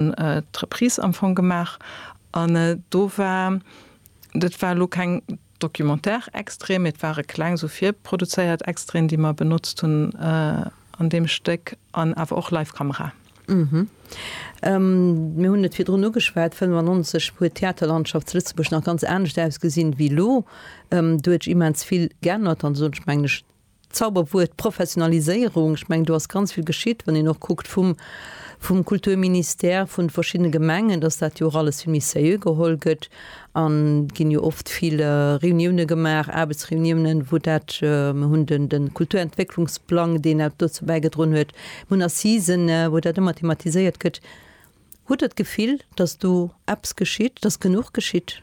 d'Reprise am Fong gemaach an do war, dat war elo keng Documentaire-Extraite, mee et ware kleng esou virproduzéiert Extraiten, déi mer benotzt hunn an deem Stéck an awer och live Kamera. Mir hunn et virdrun ugeschwat, 95 huet d'Theaterlandschaft zu Lëtzebuerg nach ganz anescht ausgesinn ewéi elo. Do huet sech immens vill geännert an esou, ech mengen, ech Zauberwuert Professionaliséierung, ech mengen do ass ganz vill geschitt, wann een och kuckt vum vum Kulturministère, vun de verschiddene Gemengen, dass dat jo och alles vill méi sérieux geholl gëtt an et ginn jo oft vill Reunioune gemaach, Aarbechtsreuniounen, wou dat, mir hunn den de Kulturentwécklungsplang, deen och dozou bäigedroen huet, mir hunn Assisen, wou dat ëmmer thematiséiert gëtt. Hutt Der d'Gefill, dass do eppes geschitt, dass genuch geschitt?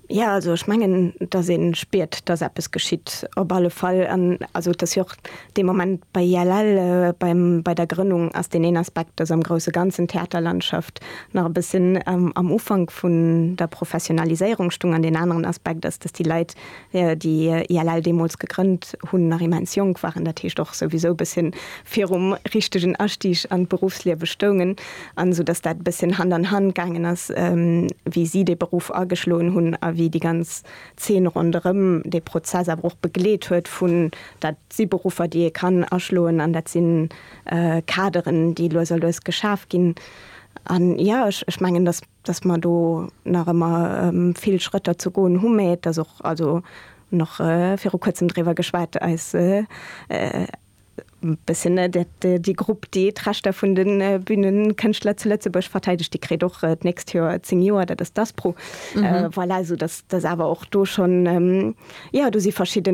Jo, also ech mengen, dass ee spiert, dass eppes geschitt op alle Fall. Also et ass jo och dee Moment bei ILL, beim, bei der Grënnung ass deen een Aspekt, dass am grouse Ganzen d'Theaterlandschaft nach e bëssen am Ufank vun der Professionaliséierung stung an deen aneren Aspekt ass, dass déi Leit, Wéi déi ILL deemools gegrënnt hunn, nach immens jonk waren, dat heescht och souwisou e bësschen virum richtegen Astieg an d'Beruffsliewe stoungen, an esou datt dat e bësschen Hand an Hand gaangen ass, wéi si dee Beruff ageschloen hunn a wéi déi ganz Zeen ronderëm dee Prozess awer och begleet huet, vun dat si Beruffer, déi ee kann aschloen an dat si Kaderen, déi lues a lues geschaf ginn. An jo, ech mengen, datt. dass mer do nach ëmmer vill Schrëtter ze goen hu, mä et ass och, also nach viru kuerzem driwwer geschwat, eis bëssen déi Grupp, déi d'Rechter vun de Bünenkënschtler zu Lëtzebuerg verteidegt, déi kritt och d'nächst Joer zéng Joer, dat ass d'Aspro. Voilà, esoudass dass awer och do schonn, jo, do si verschidde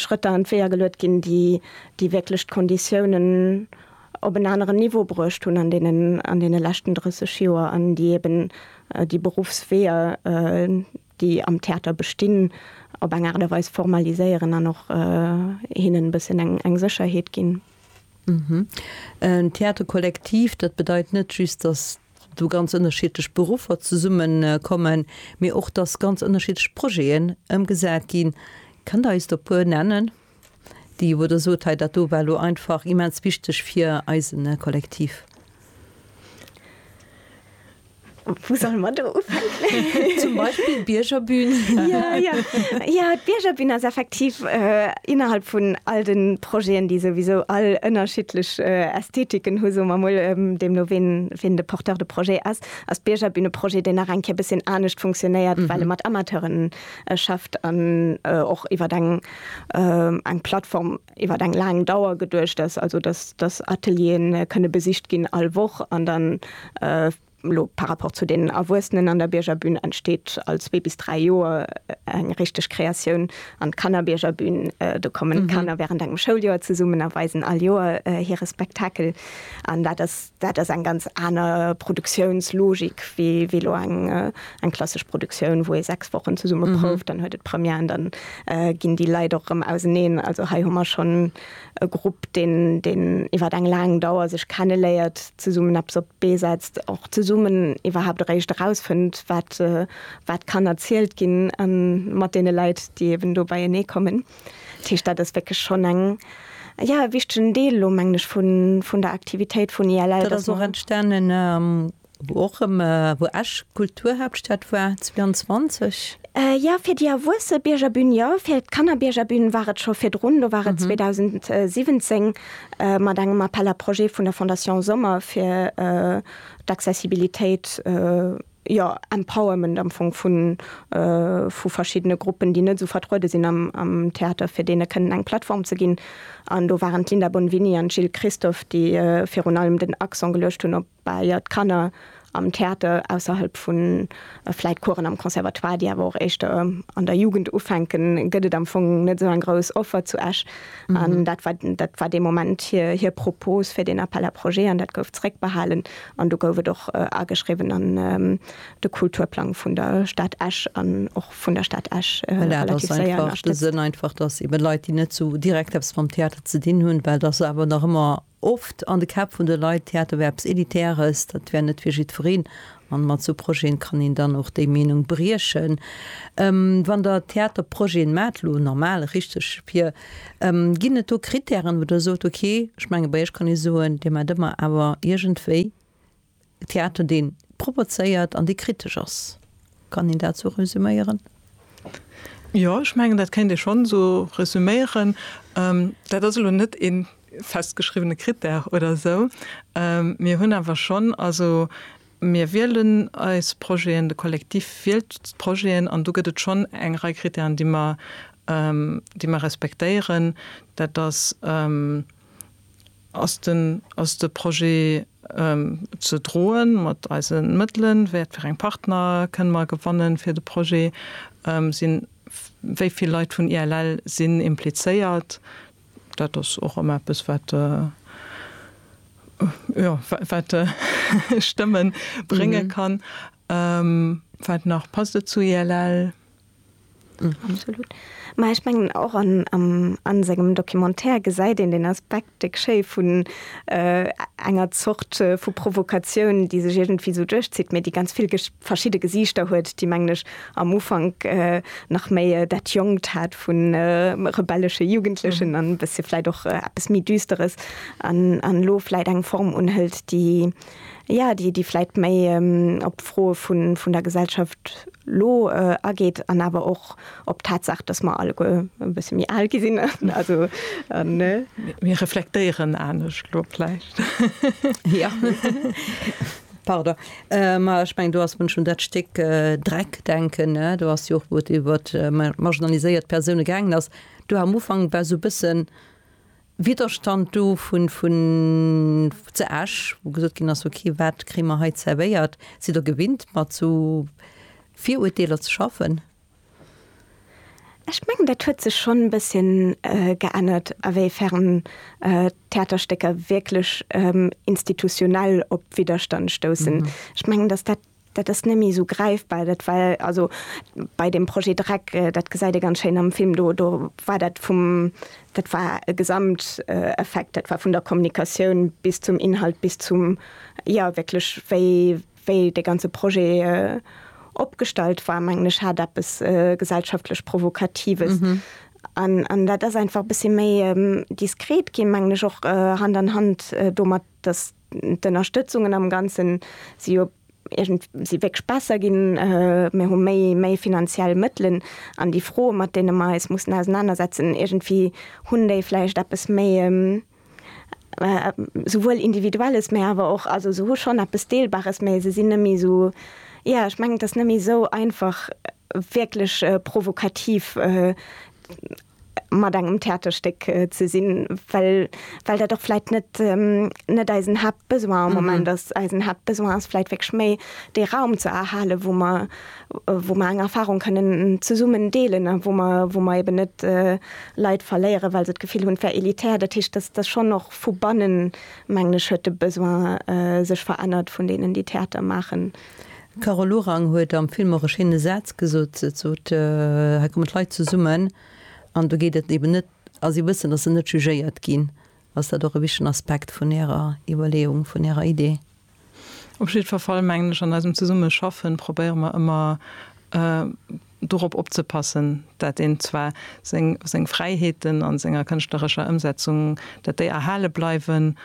Schrëtter an d'Weeër geluet ginn, déi wierklech d'Konditiounen, op en aneren Niveau bruecht hunn an deenen, an deene leschten 30 Joer an déi eeben déi Beruffsweeër, déi am Theater bestinn, op eng Aart a Weis formaliséieren an och hinnen e bëssen eng, eng Sécherheet ginn. En Théâtre collectif, dat bedeit net just, datt do ganz ënnerschiedlech Beruffer zesummekommen, mee och, datt ganz ënnerschiedlech Projeten ëmgesat ginn. Kënnt Der eis der e puer nennen? Déi wou der sot hei, dat do war elo einfach immens wichteg fir eise Kollektiv. Wou solle mer do ufänken? Zum Beispill d'Biergerbün. Jo, jo. Jo, d'Biergerbün ass effektiv innerhalb vun all de Projeten, déi souwisou all ënnerschiddlech Ästhetiken hu, soe mer emol, deemno wien, wien de Porteur de projet ass, ass d'Biergerbün e Projet, deen nach eng Kéier e bësschen anescht funktionéiert, well e mat Amateuren schafft an och iwwer eng. eng Plattform iwwer eng laang Dauer geduecht ass, also dass dass Atelieren kënne besicht ginn all Woch an dann elo par rapport zu deenen Erwuessenen an der Biergerbün entsteet all zwee bis dräi Joer eng richteg Kreatioun. An d'Kannerbiergerbün, do kommen d'Kanner während engem Schouljoer zesummen a weisen all Joer hire Spektakel an dat ass, Dat ass eng ganz aner Produktiounslogik wéi elo eng klassesch Produktioun, wou ee sechs Wochen zesumme prouft, dann huet et Première an dann ginn déi Leit och erëm auseneen. Also hei hu mer schonn e Grupp, deen iwwer eng laang Dauer sech kenneléiert, zesummen eppes op d'Bee setzt, och zesummen iwwerhaapt eréischt erausfënnt, wat kann erzielt ginn mat deene Leit, déi eeben do beienee kommen. Dat heescht, dat ass wierklech schonn eng, jo, e wichtegen Deel elo, mengen ech, vun der Aktivitéit vun ILL. Dat ass och entstanen, wou och erëm, wou Esch Kulturhaaptstad war 22. Jo, fir déi erwuesse Biergerbün jo. Fir d'Kannerbiergerbün war et scho virdrun, do war et 2017 mat engem Appel à projets vun der Fondation Sommer fir d'Accessibilitéit. jo, Empowerment am Fong vu vu verschiddene Gruppen, déi net esou vertruede sinn am am Theater, fir deene kënnen eng Plattform ze ginn. An do waren d'Linda Bonvini an d'Jil Christophe, déi virun allem den Accent geluecht hunn op Baajer, d'Kanner am Theater ausserhalb vu vläit Coursen am Conservatoire, déi awer och éischter an der Jugend ufänken, gëtt et am Fong net esou eng grouss Offer zu Esch. An dat war dat war dee Moment hir hir Propos fir deen Appel à projets an dat gouf zréckbehalen. An do gouf et och ageschriwwen an de Kulturplang vun der Stad Esch an och vun der Stad Esch relativ séier ënnerstëtzt. Voilà, dat ass einfach de Sënn, einfach, dass eebe Leit, déi net esou direkt eppes mam Theater ze dinn hunn, well et ass awer nach ëmmer oft an de Käpp vun de Leit, Theater wär eppes Elitäres, dat wär net fir jiddwereen. An mat esou Projeten kann een dann och déi Meenung briechen. Wann Der Theaterprojeten maacht, elo normal, richteg, fir Ginn et do Krittären, wou Der sot, ok, ech menge bei Iech kann ee soen, Dir maacht ëmmer awer iergendwéi Theater, dee propozéiert an dee kritesch ass. Kann een dat esou resüméieren? Jo, ech mengen, dat kéint ee schonn esou resüméieren. Dat ass elo net ee festgeschriwwene Krittär oder esou. Mir hunn awer schonn, also Mir wielen eis Projeten, de Kollektiv wielt d'Projeten an do gëtt et schonn eng Rei Krittären, déi mer, déi mer respektéieren. Dat ass, Ass den, ass de Projet ze droen mat eise Mëttelen? Wat fir eng Partner kënne mer gewannen fir de Projet? Sinn, wéi vill Leit vun ILL sinn implizéiert? Dat ass och ëmmer eppes, wat, jo, wat Stëmme brénge kann. Wat nach? Passt et zu ILL? Absolut. Mä ech mengen, och a sengem Documentaire gesäit een deen Aspekt déck schéi vun enger Zort vu Provokatioun, déi sech iergendwéi esou duerchzitt, mä déi ganz vill verschidde Gesiichter huet, déi, mengen ech, am Ufank nach méi dat jonkt hat vu rebellesche Jugendlechen an e bësse vläit och eppes méi düsteres an elo vläit eng Form unhëlt, déi, jo, déi vläit méi op d'Froe vun der Gesellschaft elo ageet an awer och op d'Tatsaach, datt mer alleguer e bësse méi al gi sinn. Also, ne? Mir reflektéieren anescht elo vläicht. Jo. Pardon, ma ech mengen do ass, wann ech un dat Stéck Dreck denken, ne, do ass jo och, wou et iwwer marginaliséiert Persoune gaangen ass, do war am Ufank war esou e bësse Widderstand do vu zu Esch, wou gesot ginn ass, okay, wat kréie mer hei zerwéiert? Sidd Der gewinnt mat esou Virurteeler ze schaffen? Ech mengen dat huet sech schonn e bësschen geännert, awéifern d'Theaterstécker wierklech institutionell op Widderstand stoussen. Ech mengen, datt dat, dat ass neméi esou gräifbar, dat war also bei dem Projet Dreck, dat gesäit ee ganz schéin am Film, do, do war dat vum, dat war e Gesamteffekt, dat war vun der Kommunikatioun bis zum Inhalt, bis zum, jo wierklech wéi, Wéi dee ganze Projet opgestallt war, mengen ech, hat eppes gesellschaftlech Provokatives. An dat ass einfach e bëssi méi diskret ginn, mengen ech, och Hand an Hand domat, datt d'Ënnerstëtzungen am Ganze si jo iergend, si wierklech besser ginn. Mir hu méi, méi finanziell Mëttelen. An déi Froe mat deene mer eis mussen ausenanersetzen, iergendwéi hunn déi vläicht eppes méi. souwuel Individuelles, mä awer och, also se hu schonn eppes Deelbares, mä se sinn net méi esou, jo, ech mengen, et ass net méi esou einfach wierklech provokativ mat engem Theaterstéck ze sinn, well well dat och vläicht net net eisen Haaptbesoin am Moment ass. Eisen Haaptbesoin ass vläicht wierklech méi dee Raum ze erhalen, wou mer wou mer eng Erfahrung kënnen zesummen deelen a wou mer, wou mer eeben net Leit verléieren, well se d'Gefill hunn, et wär elitär. Dat heescht, dass, dass schonn och vu bannen, mengen ech, huet de Besoin sech verännert vun deenen, déi Theater maachen. D'Carole Lorang huet am Film och e schéine Saz gesot. Et sot, Hei kommen d'Leit zesummen an do geet et eeben net, a si wëssen, dass se net jugéiert ginn. Ass dat och e wichtegen Aspekt vun Ärer Iwwerleeung, vun Ärer Idee? Op jiddwer Fall mengen ech, an eisem Zesummeschaffen probéiere mer ëmmer dorop opzepassen, dat een zwar seng Fräiheeten a senger kënschtlerescher Ëmsetzung, dat déi erhale bleiwen.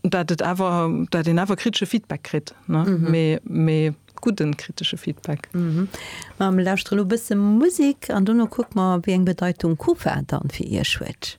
dat et awer, dat een awer kritesche Feedback kritt, ne? Mee, mee gudden kritesche Feedback. Ma mir lauschteren elo e bësse Musik an dono kucke mer, wéi eng Bedeitung Kufa dann fir Iech huet.